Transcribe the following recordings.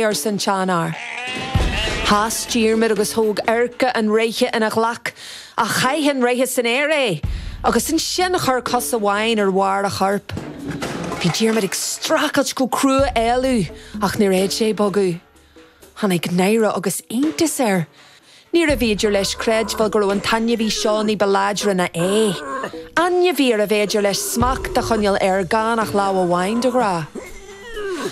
arsa an seanfhear. Sheas Diarmaid agus thóg adharca an reithe ina ghlac, ach chaith an reithe san aer é, agus ansin chuir cos amháin ar bharr a choirp. Bhí Diarmaid ag streachailt go crua éalú, ach níor fhéad sé bogadh. Tháinig náire agus iontas air. Níorbh fhéidir leis creidbheáil go raibh an t-ainmhí seo ní ba láidre ná é. Ainmhí arbh fhéidir leis smacht a choinneáil air gan ach lámh amháin de ghnáth.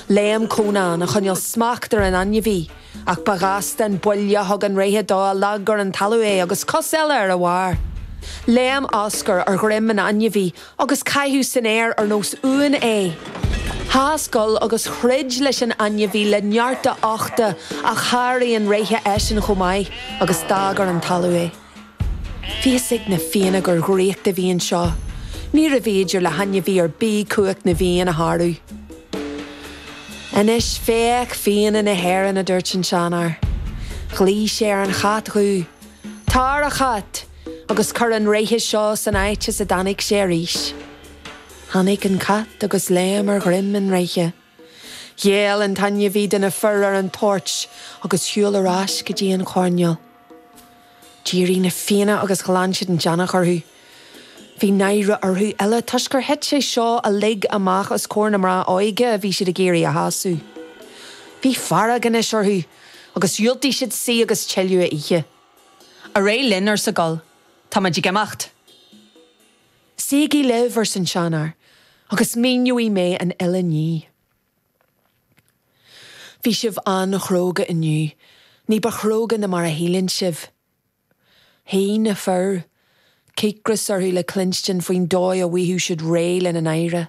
Léim Conán a choinneáil smacht ar an ainmhí, ach ba ghasta an buille a thug an reithe dó a leag ar an talamh é agus cos eile ar a bharr. Léim Oscar ar dhroim an ainmhí Agus caitheadh san aer ar nós uain é. Sheas Goll agus throid leis an ainmhí le neart a uchta ach sháraigh an reithe eisean chomh maith agus d'fhág ar an talamh é. Bhí a fhios ag na Fianna gur dhraíocht a bhí anseo. Níorbh fhéidir le hainmhí ar bith cumhacht na bhFiann a shárú. Anois féach Fianna na hÉireann, a dúirt an seanfhear. Ghlaoigh sé ar an chat dhubh, Tar, a chait! Agus cuir an reithe seo san áit as a dtáinig sé arís. Tháinig an cat agus léim ar dhroim an reithe. Ghéill an t-ainmhí do na fir ar an toirt agus shiúil ar ais go dtí an choirnéal. D'éirigh na Fianna agus ghlan siad an deannach orthu. Bhí náire orthu uile toisc gur thit sé seo uilig amach os comhair na mná óige a bhí siad ag iarraidh a shásamh. Bhí fearg anois orthu agus dhiúltaigh siad suí agus tuilleadh a ithe. Ar aghaidh linn, arsa Goll, tá muid ag imeacht. Suígí libh, arsa an seanfhear, agus míneoidh mé an uile ní. Bhí sibh an-chróga inniu, ní ba chróga na mar a shíleann sibh. Shuigh na fir, cíocras orthu le cluinstin faoin dóigh a bhfaigheadh siad réidh lena náire.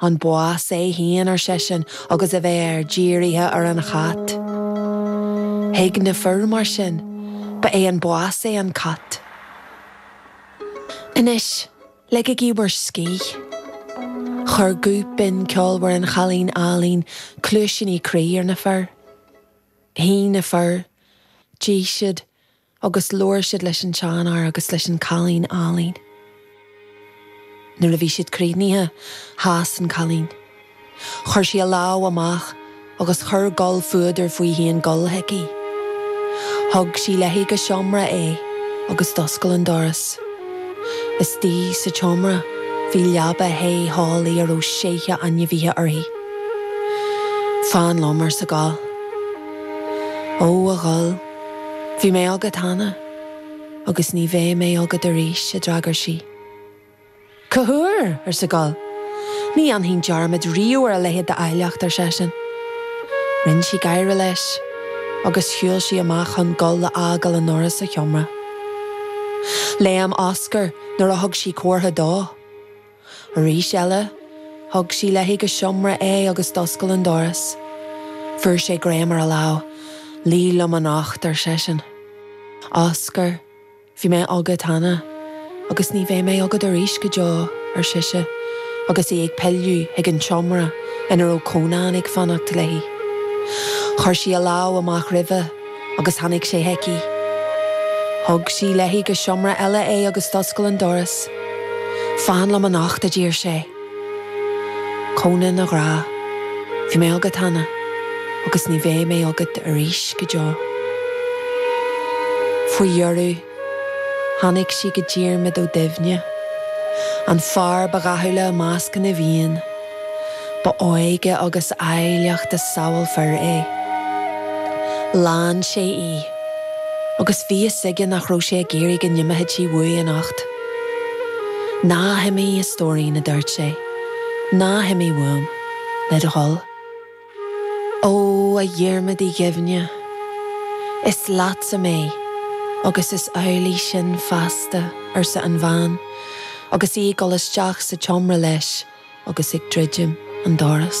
An bás é fhéin ar seisean agus a mhéar dírithe ar an chat. Thuig na fir mar sin, ba é an bás é an cat. Anois, ligigí bhur scíth. Chuir guth binn ceolmhar an chailín álainn cluaisíní croí ar na fir. Shuigh na fir, d'ith siad, Agus labhair siad leis an tseanfhear agus leis an cailín álainn. Nuair a bhí siad críochnaithe, sheas an cailín. Chuir sí a lámh amach agus chuir Goll fuadar faoi chun dul chuici. Thug sí léi go seomra é agus d'oscail an doras. Istigh sa tseomra, bhí leaba the theolaí a raibh seithí ainmhithe uirthi. Fan liom, arsa Goll. Ó, a Ghoill. Bhí mé agat cheana, agus ní bheidh mé agat arís, a d'fhreagair sí. Cathaoir! arsa Goll. Ní dhéanfainn dearmad riamh ar a leithéid d'áilleacht, ar seisean. Rinn sí gáire leis, agus shiúil sí amach chun Goll a fhágáil ina aonar sa sheomra. Léim Oscar nuair a thug sí comhartha dó. Arís eile, thug sí léi go seomra é agus d'oscail an doras. Fuair sé greim ar a lámh. Luigh liom anocht, ar seisean. Oscar, bhí mé agat cheana, agus ní bheidh mé agat arís go deo, ar sise, agus í ag pilleadh chuig an tseomra ina raibh Cónán ag fanacht léi. Chuir sí a lámh amach roimhe. agus tháinig sé chuici. Thug sí léi go seomra eile é agus d'oscail an doras. Fan liom anocht, a d'iarr sé. Conán, a ghrá, bhí mé agat cheana agus ní bheidh mé agat arís go deo. Faoi dheireadh. Tháinig sí go Diarmaid Ó Duibhne, an fear ba dhathúla i measc na bhFiann. Ba óige agus áilleacht a samhailfear é. Lean sé í, agus bhí a fhios aige nach raibh sé ag iarraidh go n-imeodh sí uaidh anocht. Ná himigh, a stóirín, a dúirt sé, ná himigh uaim, le do thoil. Ó, a Dhiarmaid Uí Dhuibhne, is leatsa mé agus is amhlaidh sin feasta, arsa an bhean agus í ag dul isteach sa tseomra leis agus ag druidim an doras.